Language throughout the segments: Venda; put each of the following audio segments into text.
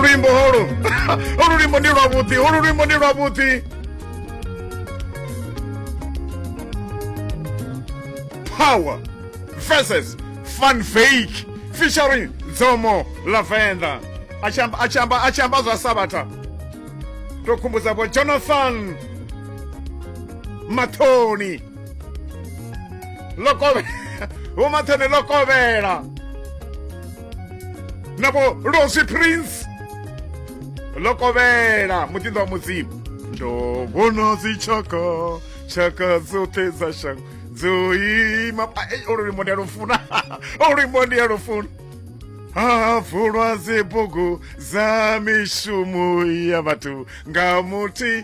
luimbo holu olu luimbo ndi lwavhuḓi olu luimbo ndi lwavhuḓi power versus fun fake featuring dzomo la venḓa a tshi amba a tshi amba a tshi amba zwa sabatha to khumbudza vho jonathan mathoni ḽo kovhela vho mathene ḽo kovhela na vho losi prince ḽo kovhela muṱinḓo wa mudzimu ndo vhona dzitshaka tshaka dzoṱhe dza shango dzo ima olu luimbo ndi a lufuna olu luimbo ndi a lufuna ha vulwa dzibugu dza mishumo ya vhathu nga muthi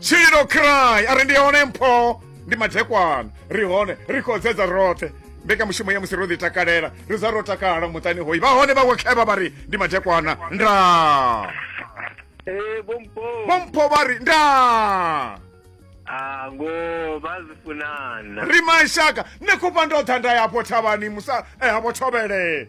tshilo cry a ri ndi hone mpho ndi madekwana ri hone ri khou dzedza roṱhe mbekanyamushumo ya musi ro ḓi takalela ri za ro takala muṱani hoyi vha hone vhawe khevha vha ri ndi madekwana nda eh, bompho vha ri nda Ah, ngo bazifunana ri mashaka ne khupha ndo tha nda yapo thavhani musa eh, hapo thovhele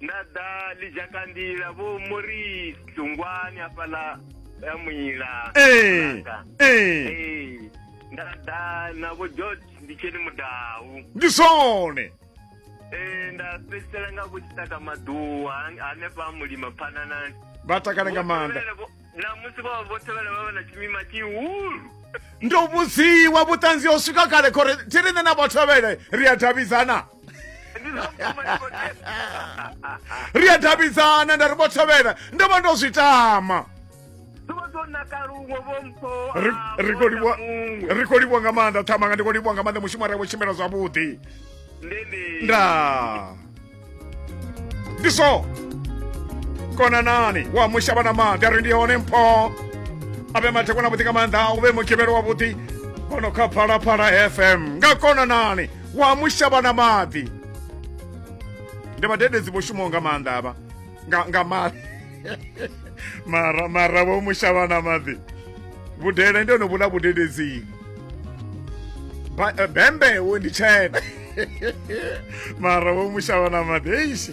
nda ḓa ḽidzhakandila vho muri tungwani hafhaḽa ya muila ee ee ee nda ḓa na vho george ndi tsheni mudau ndi zwone ee nda fhedzisela nga vho tshitaka maḓuwa han- hanefha mulima phananani vha takale nga maanḓa Vho Tevhele vho- na musi vho vha vho tevhela vha vha na tshimima tshihulu ndo vhudziwa vhuṱanzi ho swika kale khori thi riṋe na vhothovhele ri a davhidzana ri a davhidzana nda ri vhothovhela ndo vha ndo zwi tama ri khou livhwa nga maanḓa ṱhamanga ndi khou livhwa nga maanḓa mushumo arevho tshimbila zwavhuḓi ndaa ndi so konanani wa mushavha na maḓi a ri ndi hone mpho a vhe mathekona vhuḓi nga maanḓa u vhe mugivhelo wavhuḓi bono kha phalaphala fm nga konanani wa mushavha na maḓi ndi vhadededzi vho shumaho nga maanḓa avha nga nga maḓi mara mara vho mushavha na maḓi vhudele ndi ono vhula vhudededzini eh, bembe wo ndi tshena mara vho mushavha na maḓi eishi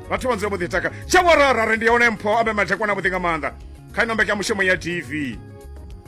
vhathu vha dzula vho ḓi taka tsha warara ri ndi yone mpho abe madhekwana vhuḓi nga maanḓa kha ino mbekya mushumo ya tv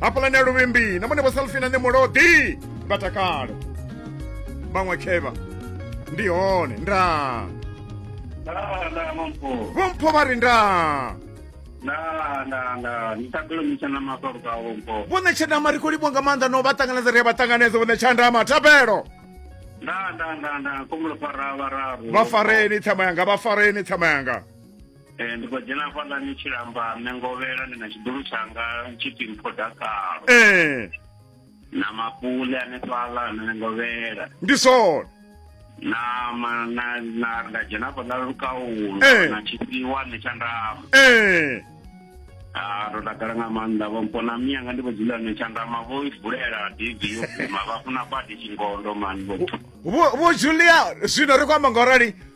hafhaḽani ya luvhimbi na mone vho salfina nṋe mulodi nga takalo vhaṅwe khevha ndi hone nda vhompho vha ri nda vhone tshandama ri khou livhwa nga maanḓa no vha ṱanganedza ri a vha ṱanganedza vhone tshandama thabelo vha fareni ṱhama yanga vha fareni ṱhama yanga Eh, ndi khou dzhena hafhaḽani tshilamba nṋe ngovhela ndi na tshiḓulu tshanga tshipfi mphodakalo ee na mapule ane fhaḽa nṋe ngovhela ndi zwone na ma- na na nda dzhena hafhaḽa lukaulo Eh. na tshifhiwa nṋe tsha ndama ee Ah, ro takala nga maanḓa vho mpona miyanga ndi vho dzula nṋe tsha ndama vho i vulela divi yo guma vha funa badi tshingondo mani vho vho vho julia zwino ri khou amba ngaurali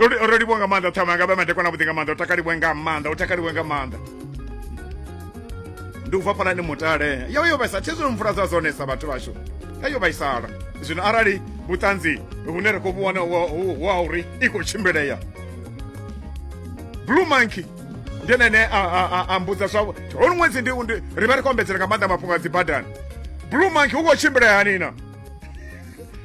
ro ro livhuwa nga maanḓa ṱhama nga vha madekwana vhuḓi nga maanḓa u takalivhe nga maanḓa u takalivhe nga maanḓa ndi u bva fhalani mutale yo yo vhaisa thi zwino mvula dza dzonesa vhathu vhashu a yo vhaisala zwino arali vhuṱanzi hune ra khou vhuwana wa uri i khou tshimbilea blue monkey ndi ene ane a mbudza zwavho holu ṅwedzi ndi ri vha ri khou ombedzela nga maanḓa mafhungo a dzibadani blue monkey u khou tshimbilea hanina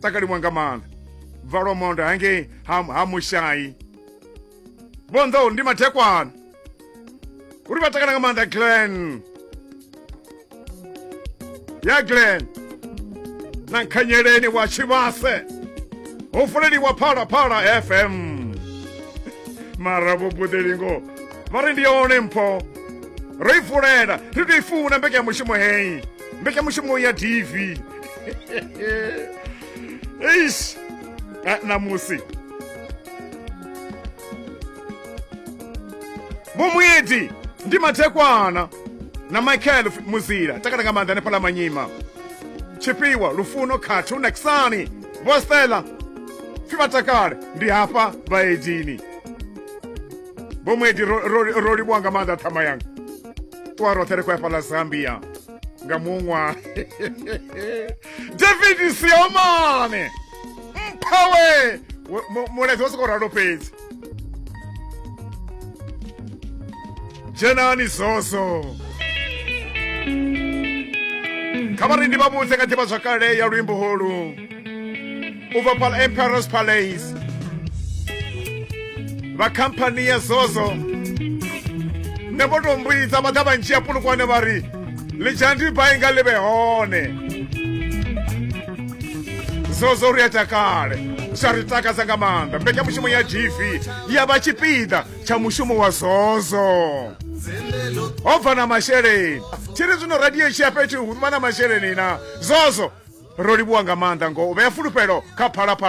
takaliwa nga maanḓa bvalomondo hangei ha, ha mushayi vhonḓou ndi mathekwana uri vha takala nga maanḓa glen ya glen na nkhanyeleni wa tshivhase ho fuleliwa phalaphala fm mara vhubuḓelingo vha ri ndi yone mpho ro i fulela ri tou i funa mbekanyamushumo heyi mbekanyamushumo ya dv eish Ah, ṋamusi vho muedzi ndi mathekwana na michael F- muzila takala nga maanḓa hanefhala manyima tshifhiwa lufuno khathu na kisani vho stela pfi vha takale ndi hafha vhaedzini vho muedzi ro- ro ro livhuwa nga maanḓa ṱhama yanga ṱuwa roṱhe ri khou ya fhaḽa zambia nga muṅwa david siomane mphawe mulaedza wa sokou ralo fhedzi dzhenani zoso kha vharendi vha vhudze nga ḓivha zwakale ya luimbo holu u bva phala emperors palace vha khamphani ya zozo ne vho tou mbudza vha ḓa vha ndzhia pulukwane vha ri ḽidzhandi bai nga ḽi vhe hone zozo ri a takale zwa ri takadza nga maanḓa mbekanyamushumo ya gv ya vha tshipiḓa tsha mushumo wa zozo ho bva na masheleni tshi ri zwino radio tshi ya fhethu hu vha na masheleni na zozo ro livhuwa nga maanḓa ngo u vhea fulufhelo kha phalaphala